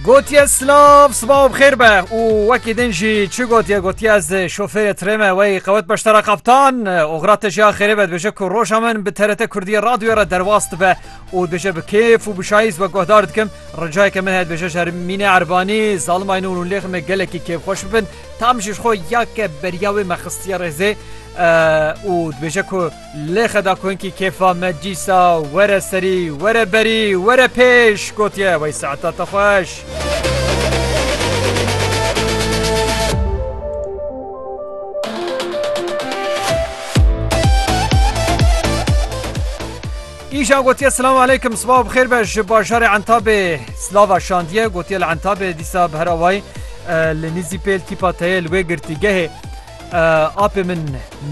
Gotiye silav siba û bixêr be û wekî din jî çi gotiye gotiye ez şofêrê tirê me wey qewet beştera qaptan oxra te jî xêrê be dibêje ku roja min bi TRT Kurdiyê radyoyê re derwas dibe û dibêje bi kêf û bi şayîz we guhdar dikim ricayeke min heye dibêje ji Mînê Erbanî zalimayî nûn û lêxin me gelekî kêfxweş bibin tam jî ji xwe ya ke beriya wê me xistiye rêzê û dibêje ku Lê xedakunkî kêfa me dîsa were serî, were berî, were pêş gotiye wey saeta te xweş. Îşan gotiye silam aleykum sibav xêr be ji bajarê entabê silava şandiye gotiye li entabê dîsa bi her awayî li nîzî pêl tîpa teye li wê girtîgehê Apê min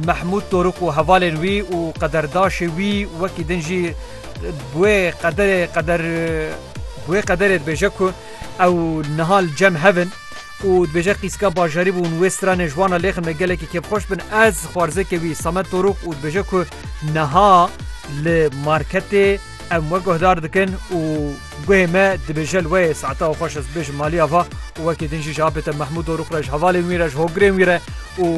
Mehmûd Torûk û hevalên wî û qederdaşê wî wekî din jî bi wê qederê qeder bi wê qederê dibêje ku ew niha li cem hev in û dibêje qîzka bajarî bûn wê stranê ji wan re lêxin me gelekî kêfxweş bin ez xwarzêkê wî Samet Torûk û dibêje ku niha li marketê em we guhdar dikin û Guhê me dibêje li wê saeta xweş ez bibêjim maliya va û wekî din jî ji apête Mehmûd Dorûx re ji hevalên wî re ji hogrên wî re û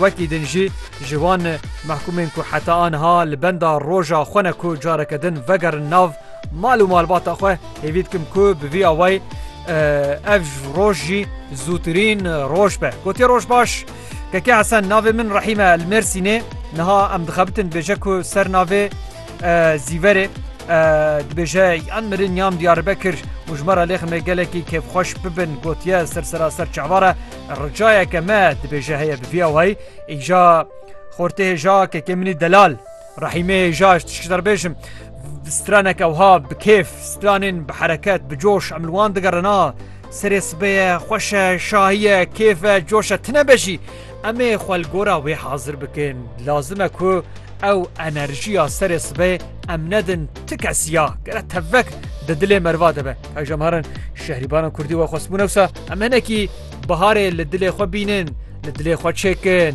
wekî din jî ji wan mehkûmên ku heta aniha li benda roja xwe ne ku careke din vegerin nav mal û malbata xwe hêvî dikim ku bi vî awayî ev roj jî zûtirîn roj be gotiye roj baş Kekê Hesen navê min Rehîme li Mêrsînê niha em dixebitin dibêje ku ser navê Zîverê dibêje yan mirin yan Diyarbekir û ji me re lêxime gelekî kêfxweş bibin gotiye ser seraser çavare ricayeke me dibêje heye bi vî ewayî îja xortê hêja kekê minî delal rehîmê hêja ji tişkî derbêjim straneke ewha bi kêf stranên bi hereket bi coş em li wan digerina serê sibeye xweşe şahiye kêfe coşe tine be jî Em ê xwe li gora wê hazir bikin. Lazim e ku ew enerjiya serê sibê em nedin ti kesî ya gere tevek di dilê merva de be. Ew ji emaran şehrîbanan kurdî we xwestbû newsa em hinekî biharê li dilê xwe bînin, li dilê xwe çêkin.